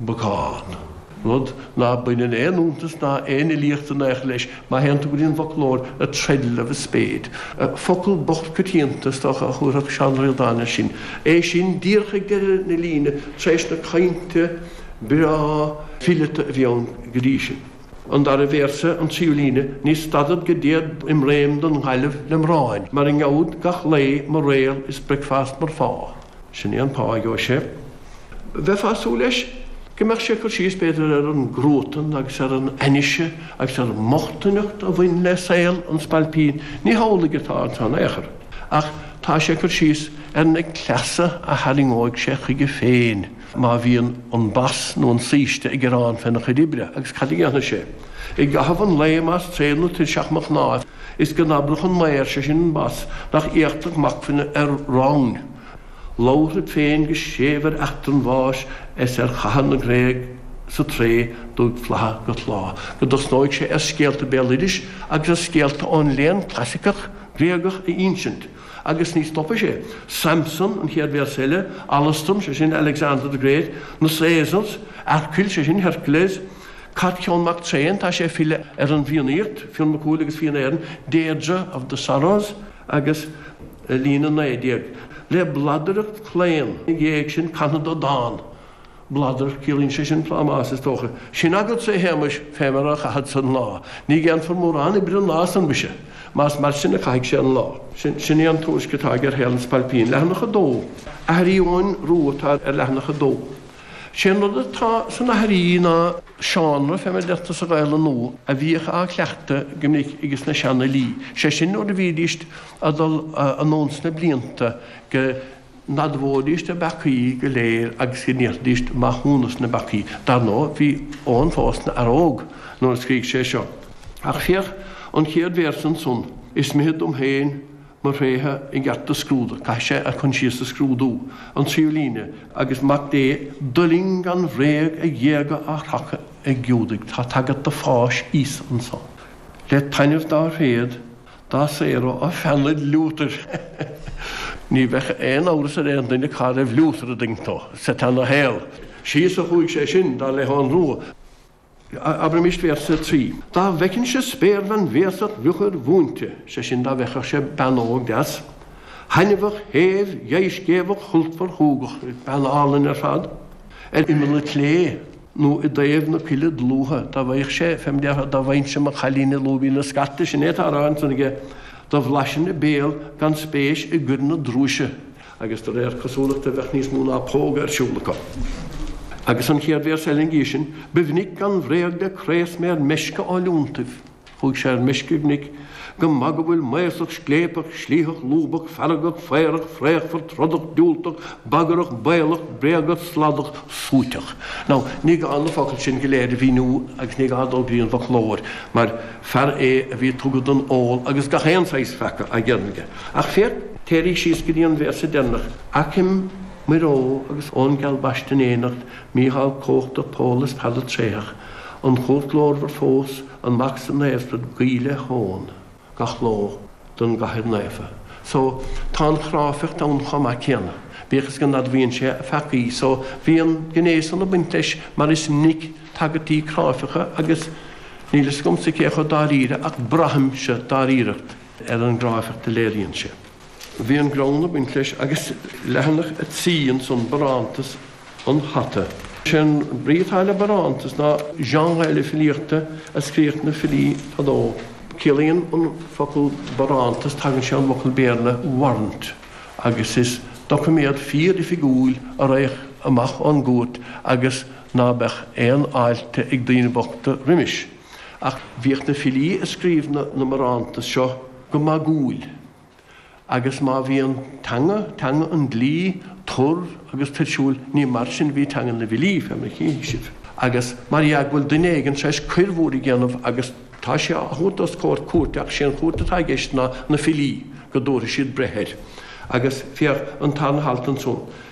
bacán, rud ná baineann aon fhiúntas ná aon fhilíocht in ao'chor leis, má théann tú go dtí an bhfoclóir, 'a treadle of a spade', focal bocht coitianta, is dócha, a thabharfadh Seán Ó Ríordáin air sin, é sin díreach ag deireadh na líne tar éis na caointe breá fileata a bhí ann go dtí sin. An dara véarsa, an tríú líne, ní stadfad go dtéad im réim don Ghaillimh lem rámhainn, mar a ngeabhad gach lae mo réal is breacfast mar phá, sin é an pá a gheobhadh sé. Bheifeá ag súil leis go mbeadh sé ag cur síos, b'fhéidir, ar an gcruatan agus ar an ainnise agus ar an mbochtaineacht a bhain le saol an spailpín. Ní hamhlaidh atá ansan, in aon chor, ach tá sé ag cur síos ar na cleasa a tharraingeoidh sé chuige féin má bhíonn an bas nó an saoiste ag gearán féna chuid oibre agus cad a dhéanfaidh sé i gcaitheamh an lae más tréith nó tuirseach mo chnáimh is go n-abródh an maor, sé sin an bas, nach éachtach m'acmhainn ar rámhainn. labharfad féin go séimh ar eachtra an bháis 's ar chatha na nGréag sa Trae d'fhúig flatha go tláth, go dtosnóidh sé ar scéalta béaloidis agus ar scéalta ón léann clasaiceach Gréagach a ínsint, agus ní stopfaidh sé, Samson, an chéad véarsa eile, Alastrom, sé sin, Alexander the Great, na Caesars, Earcail, sé sin, Hercules, Caitcheann Mac Tréin, tá sé ag filleadh ar an bhFiannaíocht, Fionn Mac Cumhaill agus Fianna Éireann, Deirdre of the Sorrows, agus i líne a naoi déag, le bladaireacht chlaon ina dhéidh sin canfad dó dán, bladaireacht, ciallaíonn sé sin plámás, is dócha. Sin agatsa, a Shéamais, fé mar a chaithfeadsa an lá. Ní dhéanfar mórán oibre an lá san mhuise, más mar sin a chaithfidh sé an lá. Sin, sin é an tuairisc atá aige ar shaol an Spailpín. Leathanach a dó. Aithrí Eoghain Rua atá ar leathanach a dó. Sé an rud atá san aithrí ná seánra fé mar a deirtear sa Ghaelainn nua a bhíodh á chleachtadh go minic ag na seanfhilí, sé sin nuair a bhídís ag dul anonn sna blianta go n-admhóidís a bpeacaí go léir agus go n-iarrfaidís maithiúnas ina bpeacaí. Dar ndóigh, bhí Eoghan fós na fhear óg nuair a scrígh sé seo. Ach féach an chéad véarsa ansan, Is mithid dom féin Mo thréithe i gceart do scrúdadh, caithfidh sé a choinsias a scrúdú, an tríú líne, agus Mac Dé d'fhuiling gan bhréag a ghéaga a chrochadh ag Giúdaigh, tá tagairt do pháis Íosa anso, le taitneamh dá thréad, dá saoradh, ó pheannaid Liútair. Ní bheadh aon amhras ar aon duine cá raibh Liútar ag daingniú sa tarna shaol. Síos a chuaigh sé sin, dar le hEoghan Rua. Abraimis véarsa 3. Dá bhfeicinnse spéirbhean bhéasach mhiochair mhúinte, sé sin dá bhfeicfeadh sé bean óg deas, thaitneamhach, shéimh, dheighscéimheach, shultmhar, shúgach, bean álainn ar fad, ar imeall an tslé, nó i dtaobh na coille dlúithe, dá bhfaigheadh sé, fé mar a déarfá, dá bhfaighinnse mo chailín i lúibín na scairte, sin é atá á rá ansan aige, do bhlaisinn a béal gan spéis i gcoireanna drúise, agus de réir cosúlachta bheadh níos mó ná póga ar siúl acu. Agus an chéad véarsa eile ina dhiaidh sin, Ba mhinic gan bhréag de chraos mé ar meisce ó lionntaibh, chuaigh sé ar meisce go minic, go maith go bhfuil maothsach scléipeach slítheach lúbach feargach faobhrach fraochmhar trodach diúltach bagarach baolach bréagach sladach suaiteach. Now, ní gá na focail sin go léir a mhíniú agus ní gá dul go dtí an bhfoclóir mar fear é a bhí tugtha don ól agus gach aon saghas peaca á dhéanamh aige. Ach féach, téirigh síos go dtí an véarsa deireanach, Aicim Muire Ógh agus Eoin geal Baiste in éineacht, Mícheál comhachtach, Pól is Peadar tréitheach, An Chúirt ghlórmhar fós, an Mac 's an Naomhspiorad, Guí le hEoghan gach ló don gCathair Naofa. So, tá an chráifeacht ann chomh maith céanna, bíodh is go n-admhaíonn sé a pheacaí. So, bhí an ghné san ag baint leis mar is minic tagairtí cráifeacha agus níl fhios agamsa cé chomh dáiríre ach braithimse dáiríreacht. ar an gcráifeacht a léiríonn sé. Bhí an greann ag baint leis agus leathanach 3 ansan, Barántas an Hata. Is é an brí atá le barántas ná genre eile filíochta a scríodh na filí fadó. Ciallaíonn an focal barántas, tagann sé ón bhfocal Béarla warrant agus is doiciméad fíor-oifigiúil a raghadh amach ón gcúirt agus ná beadh aon fháilte ag daoine bochta roimis. Ach bhíodh na filí ag scríobh na mbarántas seo go magúil, agus má bhí an teanga, teanga an dlí, tur agus tuirsiúil, ní mar sin a bhí teanga na bhfilí, fé mar a chífidh sibh. Agus mar dhea go bhfuil duine éigin tar éis coir mhór a dhéanamh agus tá sé á thabhairt os comhair cúirte, ach sé an chúirt atá i gceist ná na filí, go dtabharfaidh siad breith air. Agus féach an tarna halt ansan.